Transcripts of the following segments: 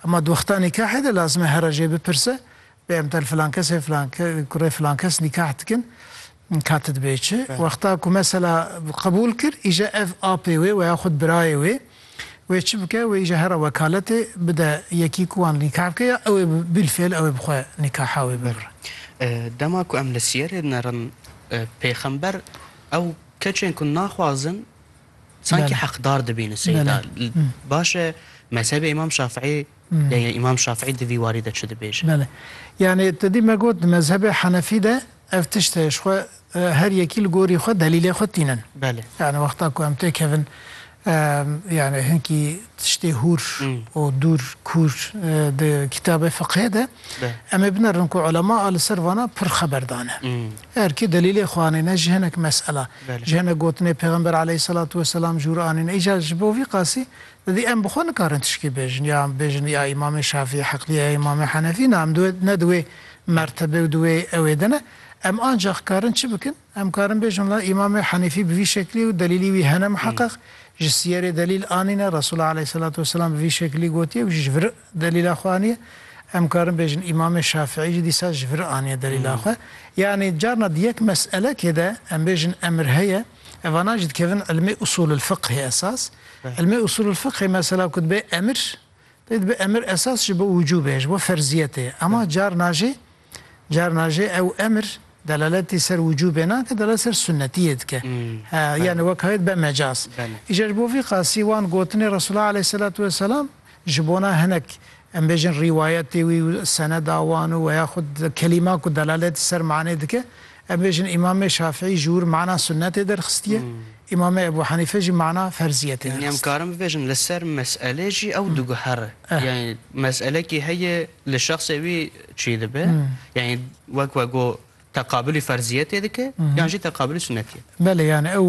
Hema di wexta nîkahê de lazim e here jê bipirse, bê em tel filan kesê filan kurê filan kes nîkah dikin ka tu dibê çi. Wexta ku mesela qebûl kir îje ev apê wê weya xwe birayê wê wê çi bike wê îje here wekaletê bide yekî ku wan nîkah bike ya ew ê bîlfêl ew ê bi xwe nîkaha wê bigre. Dema ku em li siyerê dinerin pêxember ew keçên ku naxwazin, Sanki heqdar dibîn li Seyyid a. Baş e mezhebê Îmam Şafiî ya ya Îmam Şafiî di vî warî de çi dibêje? Belê. Yanî tu dî me got di mezhebê Henefî de ev tişt heye ji xwe her yekî li gorî xwe delîlê xwe tînin. Belê. Yanî wexta ku em têkevin yanî hinkî tiştê hûr û dûr kûr di kîtabê fiqhê de em ê binerin ku ulema a li ser vana pir xeber dane. Her kî delîlê xwe anîne ji hinek mesela. Ji hinek gotinê Pêxember aleyhîsselatu weselam jûr anîn. Îcar ji bo vî qasî didî em bi xwe nikarin tişkî bêjin ya em bêjin ya Îmamê Şafî heqlî ye ya Îmamê Henefî na em di wê ne di wê mertebe û di wê ewê de ne. Em ancax karin çi bikin? Em karin bêjin la Îmamê Henefî bi vî şeklî ye û delîlî wî hene miheqeq ji sîyerê delîl anîne, Resûl aleyhîsselatu weselam bi vî şeklî gotiye û ji vir Delîla xwe aniye. Em karin bêjin Îmamê Şafiî jî dîsa ji vir aniye delîla xwe. Yanî carna di yek meselekê de em bêjin emir heye, evanan jî dikevin ilmê usûlulfiqhê esas. Ilmê usûlulfiqhê mesela ku dibe emir, pê dibe emir esas ji bo wicûbê ye, ji bo ferziyetê ye. Ema carna jî Carna jî ew emir delaletî ser wicûbê nake, delalet ser sunnetiyê dike. He, yanî wek hayt be mecaz. Îcar ji bo vî qasî wan gotinê Resûlullah aleyhîsselatu wesselam ji bona hinek em bêjin rîwayetê wî û seneda wan û weya xwe di kelîman ku delaletî ser manê dike Em bêjin Îmamê Şafîî ji wir mana sunnetê derxistiye, Îmamê Ebû Henîfe jî mana ferziyetê derxistiye. Yanî em karin bibêjin li ser meselê jî ew diguher e. Yanî meselekî heye li şexsê wî çî dibe. Yanî wek we got teqabilî ferziyetê dike yan jî teqabilî sunnetiyê. Belê yanî ew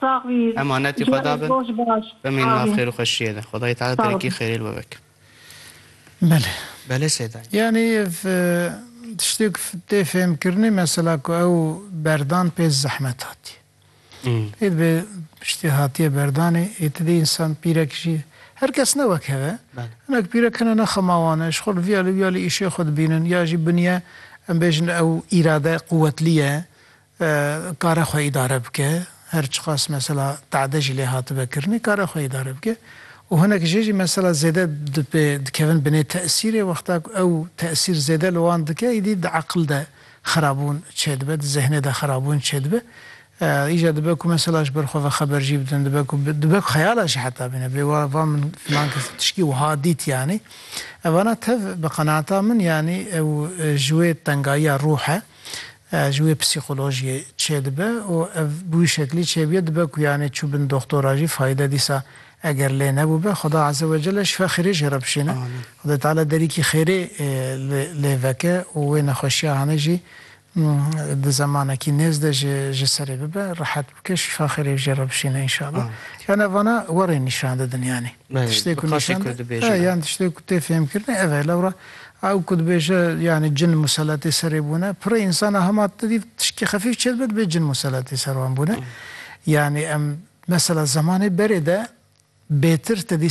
Sax bî. Emanetî Xwe da bin. Bimînin nav xêr û xweşiyê de. Xwedayê Teala terekî xêrê li we bike. Belê. Belê Sêdayî. Yanî ev tiştêk tê fêhmkirinê mesela ku ew berdan pê zehmet hatiye. Pê dibe piştî hatiye berdanê ê ti dê însan pîrek jî her kes ne wek hev e. Hinek pîrek hene ne xema wan e ji xwe li vîya li vîya li îşê xwe dibînin ya jî biniye em bêjin ew îrade quwetlî ye kare xwe îdare bike, her çiqas mesela tade jî lê hatibe kirinê kare xwe îdare bike û hinek jê jî mesela zêde dipê dikevin binê tesîrê wexta ku ew tesîr zêde li wan dike îdî di eqil de xerabûn çêdibe di zehnê de xerabûn çêdibe îja dibe ku mesela ji ber xwe ve xeber jî bidin dibe ku dibe ku xeyala jî heta bîne bê wa va min filan kes tişkî wiha dît yanî evana tev bi qenaata min yanî ew ji wê tengayiya ruh e ji wê psîkolojiyê çêdibe û ev bi wî şeklî çêbûye dibe ku yanî çû bin doxtora jî fayde dîsa eger lê nebûbe Xweda Eze Wecele şifa xêrê jê re bişêne Xwedê Teala derîkî xêrê lê veke û wê nexweşiya hanê jî di zemanekî nêz de ji ji serê bibe rehet bike şifa xêrê jê re bişêne înşallah yan ev vana werên nîşan didin yanî. Tiştê ku nîşan da yan tiştê ku tê fêhmkirinê ev e. Lewra ew ku dibêje yanî cin museletê serê bûne, pirê însan a hema tevî tiştî xefîf çê dibe dibê cin museletê ser wan bûne. Yanî em mesela zemanê berê de bêtir tevî